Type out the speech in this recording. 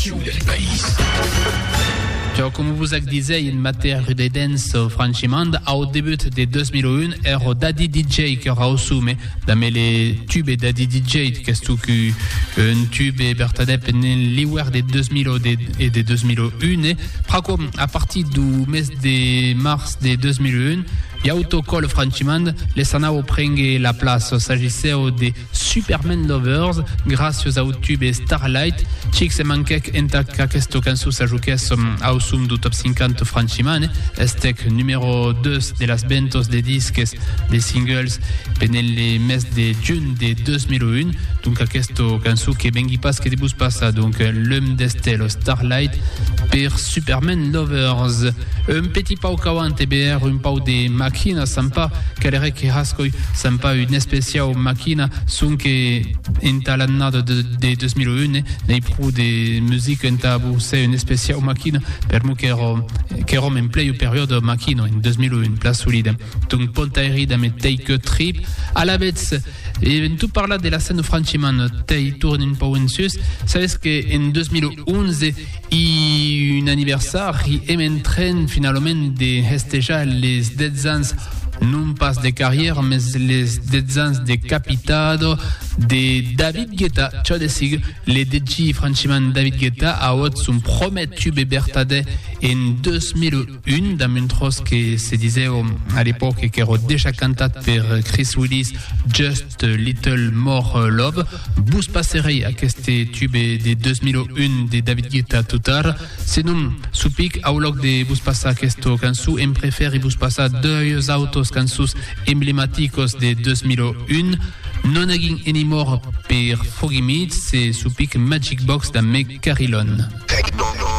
Quiu del país. Çò com vos ac disèi en matèr de dens, franchiment, au debut de 2001, ero Daddy DJ que rausume damé le tube Daddy DJ, qu'es tu cu un tube bertadèp en l'iuèr de 2000 e de 2001, pr'aquò, a partir du mes de mars de 2001, Iauto Col franchiment, les anau prengue la plaça, s'agissèu de Superman Lovers, gràcios au tube Starlight, chic se manquèc entà qu'aquesta cançon s'ajoquèsse au som dau Top 50 franchimant, estèc numèro 2 de las ventas de disques de singles pendent le mes de junh de 2001, donc aquesta cançon que vengui pas que de vos passar, donc L'homme d'Estelle, Starlight, per Superman Lovers. Un petit pau qu'auant e beer un pau de maquina s'an pas, calerè que hascoi s'an pas un especiau maquina, sonque entà l'annada de 2001 n'ei pro de musica entà bousser un especiau maquina, per mo qu'èro qu'èrom en plei au periòde maquina en 2001, plan solida, donc pontairi damb eth tei que trip, alavetz, en tot parlar de la Seine-Franchiman, tei tornen un pau en sus, sabes que en 2011, I un anniversari e me'n tren finalament de hestejar les 10 ans non pas de carrièra, mes les 10 ans de capitado de David Guetta, çò de sigur, le DJ franchiman David Guetta auot son promèt tube bertadè en 2001. Un damb un tròç que se disèu a l'epòca qu'èro dejà cantat per Chris Willis, Just a Little More Love. Vos passerèi aqueste tube de 2001 de David Guetta tot ara. Senon, supic, au lòc de vos passar aquesta cançon, em prefèri vos passar doius autos cançons emblematicos de 2001, Non Nagging Anymore per Foggy Mead e, supic, Magic Box damb Meg Carillon.